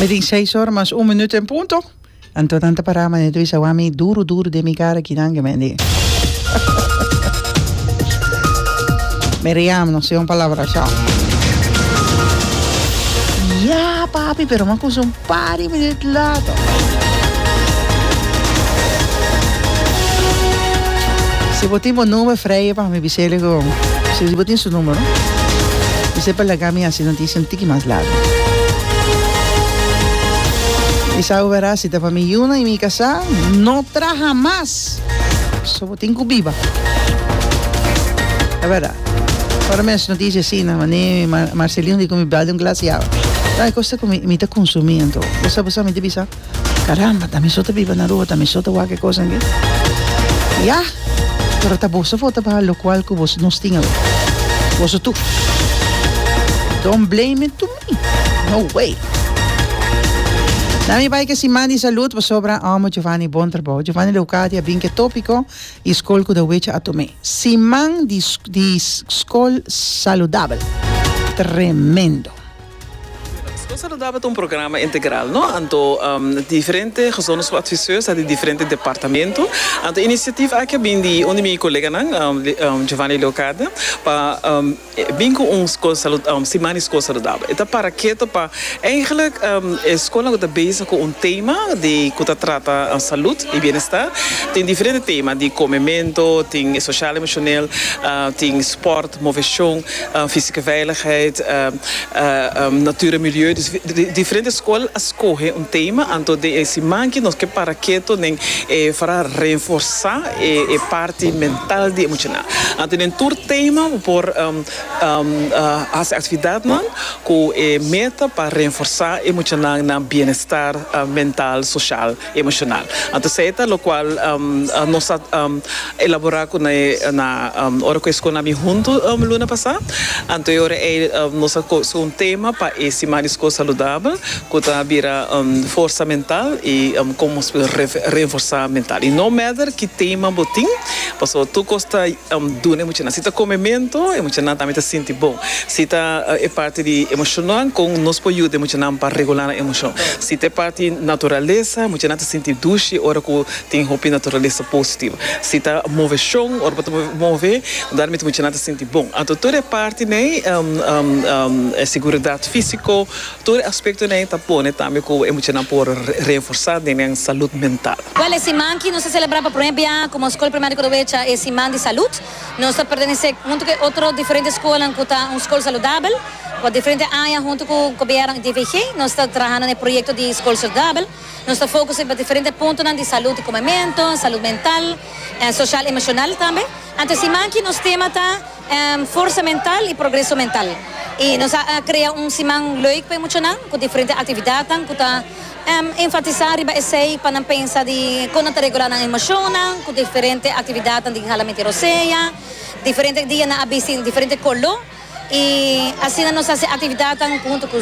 Mi tin seis ora mas un minuto en punto. Anto nan ta pará, mané Luis, a wami duru duru den mi cara ki nan gemendi. Miriam, no si un palabra, chao. Ya, papi, pero man kunsa un Pari minut later. Si bo tin bo number freje pa mi bis'e lego. Si bo tin su numero. Bis'e pa laga mi hasi noticia un tiki mas largo. Mi sa ube ras si ta pa mi yuna y mi casa no traha mas. So bo tin cu biba. Averda. Ora mi haci noticia asina, mani Marcelino di cu mi bali un glas di awa. Bay cosa cu mi ta consumi anto. Bo sa, bo sa, mi ta bisa, caramba, ta mi so ta biba na Aruba, ta mi so ta wak e cosa aki. Ya, pero ta boso for ta baha locual cu boso nos tin awe. Boso tur. Don't blame it to me. No way. Na mi bay ke siman di salud pasobra amo Giovanni bon trabao. Giovanni Leocadi a bin ke topico. di skol ku ta wecha atum'é. Siman di di Skol Saludabel. Tremendo! Skol Saludabel ta un programa integral, no? Anto diferente gezondheidschool-adviseurs ta di diferente departamento. Anto inisiativa aki a bin di un di mi koleganan, Giovanni Leocadia, pa. E bin ku un skol salud um siman di skol saludabel. E ta para keto pa Eigenlijk um e skolnan ku ta bezig ku un tema di ku ta trata salud i bienestar. Tin diferente tema di komementu, tin e sosial emoshonel, um tin sport, moveshon, um fisike veiligheid, um um natuur en milieu. Dus di diferente skol a skohe un tema anto den e siman aki nos ke para keto nen e for a renforsá. e parti mental di e muchanan. Anto den tur tema bo por hasi aktividatnan ku e meta pa renforsá e muchanan nan bienestar mental, soshal, emoshonal. Anto esei ta lokual nos a elaborá ku na na ora ku e skol nan a bini huntu luna pasá. Anto e ora ei nos a koge un tema pa e Siman di Skol Saludabel. cu ta bira forsa mental y con nos puede reenforsa mental. Y no meder ki tema bo tin, pasobra tur cos ta duna e muchanan. Si ta come mento, e muchanan tambe ta sinti bon. Si ta e parti di emocionnan, con nos por yuda e muchanan pa regular nan emocion. Si ta e parti naturaleza, e muchanan ta sinti dushi ora cu tin hopi naturaleza positivo. Si ta movecion, ora bo ta move, dan mente muchanan ta sinti bon. Anto tur e parti n'ey, seguridad fisico, Tur e aspektonan ei ta pone tambe ku e muchanan por reenforsá den nan salud mental. Wèl, e siman ki nos ta selebrá pa promé bia komo Skol Primario Korowecha e Siman di Salud. Nos ta pertenesé huntu ku e otro diferente skolan ku ta un skol saludabel. Pa diferente aña huntu ku Gobièrnu i DVG nos ta trahando na e proyekto di Skol Saludabel. Nos ta fokus riba diferente puntonan di salud di komementu, salud mental, sosial, emoshonal tambe. Anto e siman ki nos tema ta. Forsa mental y progreso mental. Y nos a crea un siman leuk pa e muchanan cu diferente actividadnan cu ta enfatisa riba esey pa nan pensa di con nan ta regula nan emocionnan cu diferente actividadnan di Ginhalaminti Rosea. Diferente dia nan a bisti diferente color y asina nos a haci actividadnan hunto cu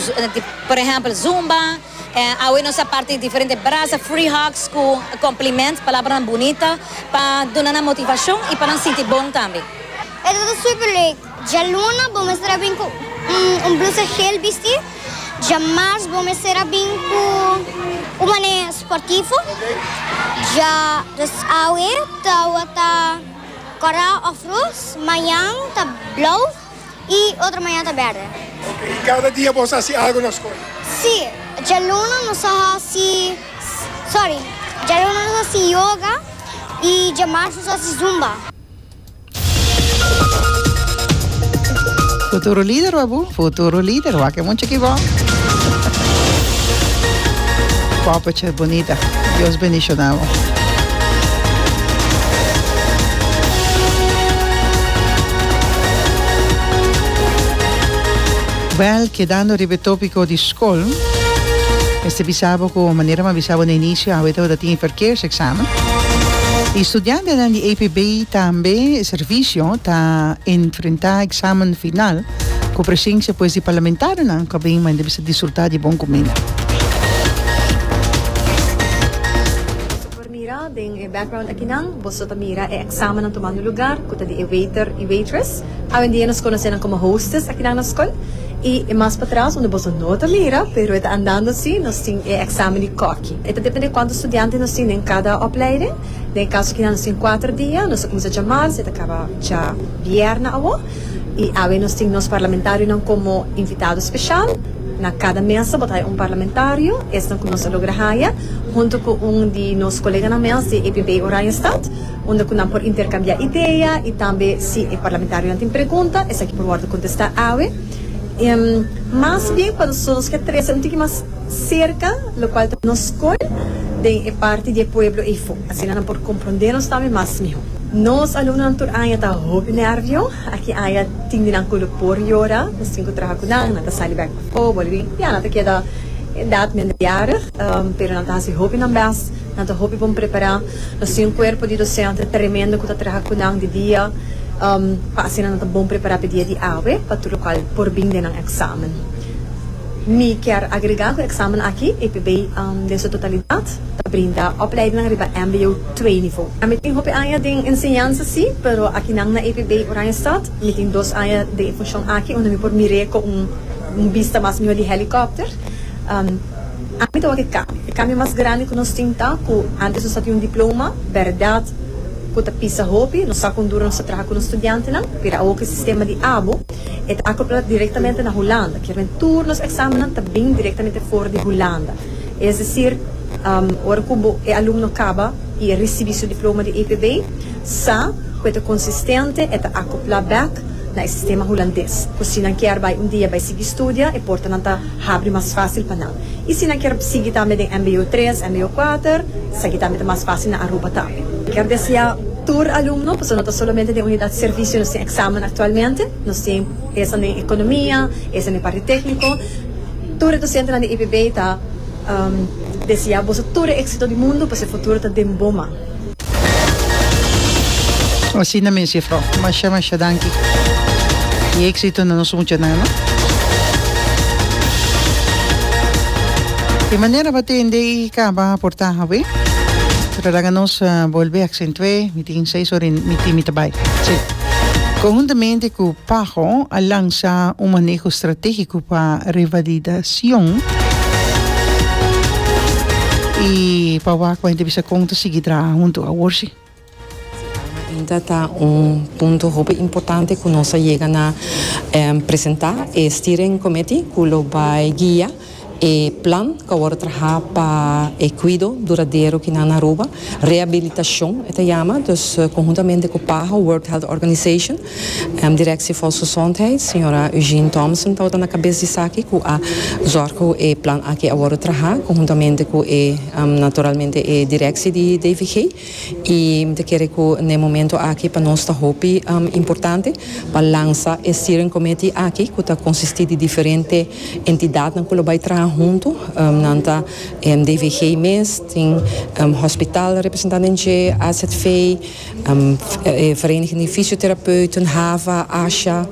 por ejemplo zumba. En awe nos a parti diferente brasa free hugs cu compliments, palabranan bunita pa duna nan motivacion y pa nan sinti bon tambe. Esto ta super leuk! Djaluna bo mester a bin cu un blusa geel bisti, djamars bo mester a bin cu un mane sportivo, dja dus awe tawata cora of roos, mañan ta blauw. y otro mañana ta berde. Ok, y cada dia boso haci algo na scol? Si, djaluno nos a haci, sorry, djaluno nos a haci yoga y djamarzo nos a haci zumba. Futuro lider wak bu? Futuro lider wak e mucha ki bo. Poppetje bonita Dios bendiciona bo. Wèl, kedando riba e tópiko di skol, mester bisa bo ku manera mi a bisa bo na inisio, awe tabata tin e parkeerseksamen. E studiantenan di APB tambe servisio ta enfrentá eksamen final ku presensia pues di parlamentarionan ku a bin manda bisa disfrutá di bon kumina. Mira den e background akinan boso ta mira e examennan tomando lugar cu ta di e waiter y waitress. Awendia nos conoce nan como hostess akinan na scol. Y e mas patras unda boso no ta mira pero e ta andando así nos tin e examen di cocky. E ta depende cuanto studiante nos tin den cada opleiding. Den e caso akinan nos tin cuater dia, nos a cuminsa djamal si e ta caba dja bierna awo. I awe nos tin nos parlamentarionan komo invitado speshal. Na kada mesa bo ta haya un parlamentario, esnan ku nos a logra haya, huntu ku un di nos koleganan mes di APB Oranjestad, unda ku nan por interkambiá idea i tambe si e parlamentarionan tin pregunta, esaki por wòrdu kontestá awe. Mas bien pa nos nos ke trese un tiki mas serka lokual ta nos kor den e parti di e pueblo ei. Asina nan por komprondé nos tambe mas mihó. Nos alumnonan tur aña ta hopi nervio. Aki aña tin di nan cu lo por yora. Nos tin cu traha cu nan. Nan ta sali bek pa fobo libi. Ya nan ta keda edad minderjarig, pero nan ta haci hopi nan best. Nan ta hopi bon prepara. Nos tin un cuerpo di docente tremendo cu ta traha cu nan di dia pa asina nan ta bon prepara pa e dia di awe pa tur locual por bin den nan examen. Mi kier agrega cu e examen aki, EPB den su totalidad, ta brinda opleidingnan riba mbo. Twee nivo. Mi tin hopi aña den enseñansa si, pero akinan na EPB Oranjestad mi tin dos aña den e funshon aki unda mi por mir'é ku un un bista mas mihó di hèlikòpter. Ami ta wak e kambio. E kambio mas grandi ku nos tin ta ku antes nos a tin un diploma, bèrdat, ku ta pisa hopi, nos sa kon duro nos ta traha ku nos studiantenan, pero awor ku e sistema di abo, e ta akoplá direktamente na Hulanda, kiermen tur nos èksamennan ta bin direktamente for di Hulanda. Es desir, ora cu bo e alumno caba y e ricibi su diploma di EPB, sa cu e ta consistente, e ta acopla bek na e sistema Hulandes, cu si nan kier bay un dia bay sigui studia, e portanan ta habri mas facil pa nan. Y si nan kier sigui tambe den mbo tres, mbo cuater, esaki tambe ta mas facil na Aruba tambe. Kier desea tur alumno, pasobra no ta solamente den Unidad Servicio nos tin examen actualmente, nos tin. Esnan den economia, esnan den parti tecnico. Tur e docentenan di IPB ta desea boso tur e exito di mundo pasobra e futuro ta den bo man. Asina mes juffrouw. Masha masha danki. Y exito na nos muchanan no. Di manera bo a tende y caba aporta awe. Tra laga nos bolbe accentué. Mi tin seis ora y mi tin mi ta bay. conjuntamente cu Paho a lansa un maneho strategico pa revalidacion y pa wak pa hende bisa con ta sigui traha hunto awor si. Ainda ta un punto hopi importante cu nos a yega na presenta e Steering Committee cu lo bay guia. E plan ku awor a traha pa e kuido duradero ki nan na Aruba, rehabilitashon e ta yama, dus konhuntamente ku PAHO, World Health Organization, Direksie Volksgezondheid, señora Eugene Thompson tabata na kabes di esaki ku a zòrg ku e plan aki awor a traha konhuntamente ku e, naturalmente, e direksie di DVG. I mi ta kere ku na e momento aki pa nos ta hopi importante pa lansa e steering committee aki ku ta konsistí di diferente entidatnan ku lo bai traha huntu. Nan ta DVG mes, tin hospital representá den dje, AZV, e Vereniging di Fisioterapeuten, hava, asha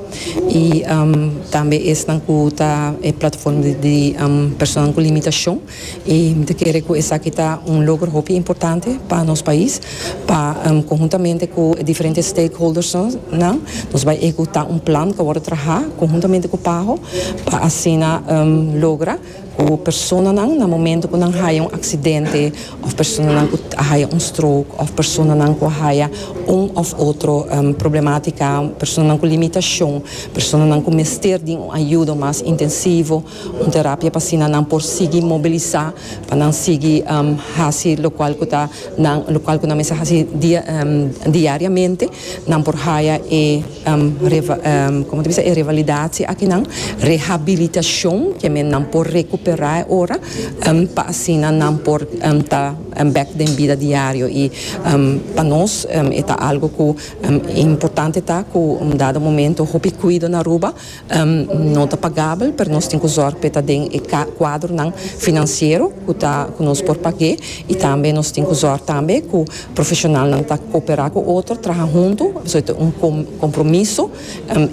i tambe esnan ku ta e plataforma di personanan ku limitashon. I mi ta kere ku esaki ta un logro hopi importante pa nos pais, pa konhuntamente ku e diferente stakeholders nan nos bai ehekutá un plan ku a wòrdu trahá konhuntamente ku Paho pa asina logra ku personanan na momentu ku nan haya un aksidente òf personanan ku a haya un stroke òf personanan ku a haya un òf otro problematika, personanan ku limitashon, personanan ku mester di un ayudo mas intensivo. Un terapia pa asina nan por sigui mobilisá, pa nan sigui hasi lokual ku ta nan lokual ku nan mester hasi dia diariamente. Nan por haya e komo ta bisa e revalidatie akinan, rehabilitashon, ke men nan por rekuperá e ora pa asina nan por ta bèk den bida diario. I pa nos e ta algu ku importante ta ku un dado momento hopi kuido na Aruba. No ta pagabel, pero nos tin ku zòrg pa e ta den e kuadronan finansiero ku nos por pag'é i tambe nos tin ku zòrg tambe ku profeshonalnan ta kooperá ku otro, traha huntu, pasobra ta un kompromiso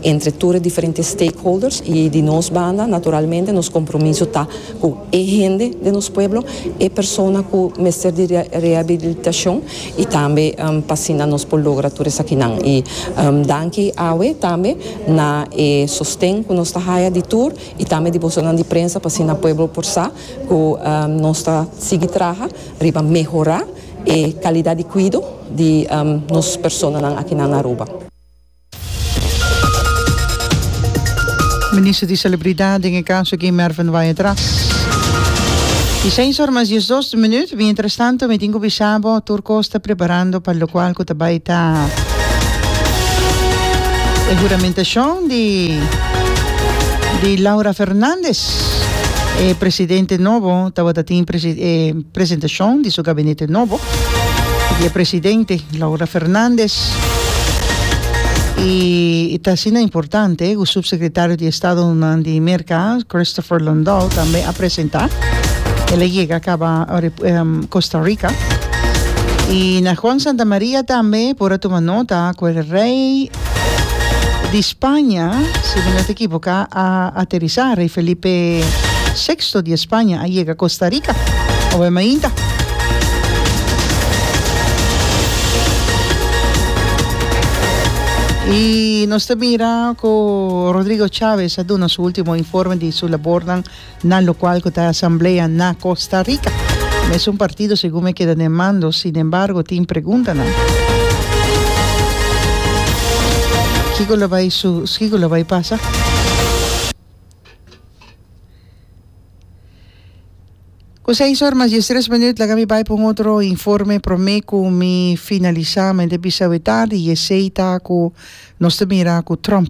entre tur e diferente stakeholders i di nos banda naturalmente nos kompromiso ta ku e hende den nos pueblo, e persona ku mester di rehabilitashon y tambe pa asina nos por logra tur esakinan y danki awe tambe na e sosten cu nos ta haya di tur y tambe di bosonan di prensa pa asina pueblo por sa cu nos ta sigui traha riba mehora e calidad di cuido di nos personanan akinan na Aruba. Minister di Salubridad den e kaso aki Mervin Wayatrass i seis or mas dies dos minut. Mientras tanto mi tin ku bisa bo tur kos ta preparando pa lokual ku ta bai ta e huramentacion di di Laura Fernandez e presidente nobo tabata tin e presentacion di su gabinete nobo di e presidente. Laura Fernandez. Y e ta asina importante cu Subsecretario di Estadonan di Merca, Christopher Lundall, tambe a presenta. El a yega caba Costa Rica. Y na Juan Santamaria tambe por a tuma nota cu el rey. di Spaña, si mi no ta ekiboká, a aterisá. Rei Felipe Seksto di España a yega Kosta Rika awe mainta. I nos ta mira ku Rodrigo Chávez a duna su último informe di su labornan. Na lokual ku ta e asamblea na Kosta Rika. Mesun partido segun mi a keda den mando, sinembargo tin preguntanan. Kiko lo bai su, kiko lo bai pasa? Ku seis or mas diestres minüt laga mi bai pa un otro informe promé ku mi finalisá. Mente bisa wetadi i esei ta ku nos ta mira ku Trump.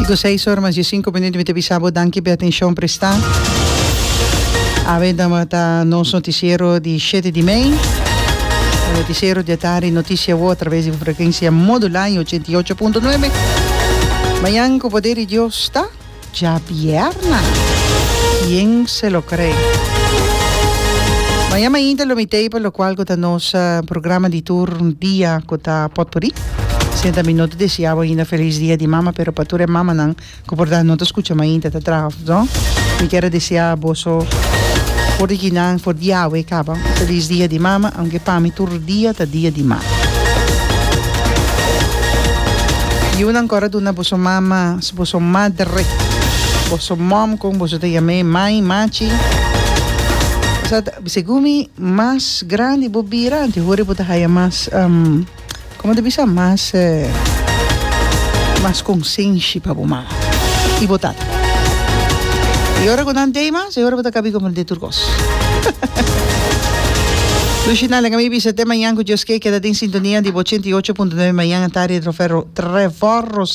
Y cu seis ora mas di sinku minuto mi ta bisa bo danki p'e atencion presta. Awe dama ta nos noticiero di shete di mei. Noticiero di atari noticia wo a traves di frecuencia modulada in ochenta y ocho punto nuebe. Mañan cu poder di Dios ta. Djabierna! Quien se lo cree? Mañana ainda lo mitei pa locual cu ta nos programa di tur dia cu ta potpuri. Senta mi no ta desiabo ainda feliz dia di mama pero pa tur e mamanan cu por dal no ta scucha mainta ta traha no mi kier a desea boso for di kinan for di awe caba feliz dia di mama aunke pa mi tur dia ta dia di mama. Yiunan cor a duna boso mama. Boso madre, boso mom con boso ta yam'e mai, machi. Sat, segun mi, mas grandi bo bira anti ho'ri bo ta haya mas, um, como ta bisa? Mas, eh, mas consenshi pa bo mama y bo tata. Y ora cu nan tey mas, e ora bo ta cabi comprende tur cos. Lushi Nale, Camille Bisete, Mayan cu Dios ke, keda den sintonia di bo ochenta y ocho punto nueve Mayan, Atari, Trofer, Trevor Ros.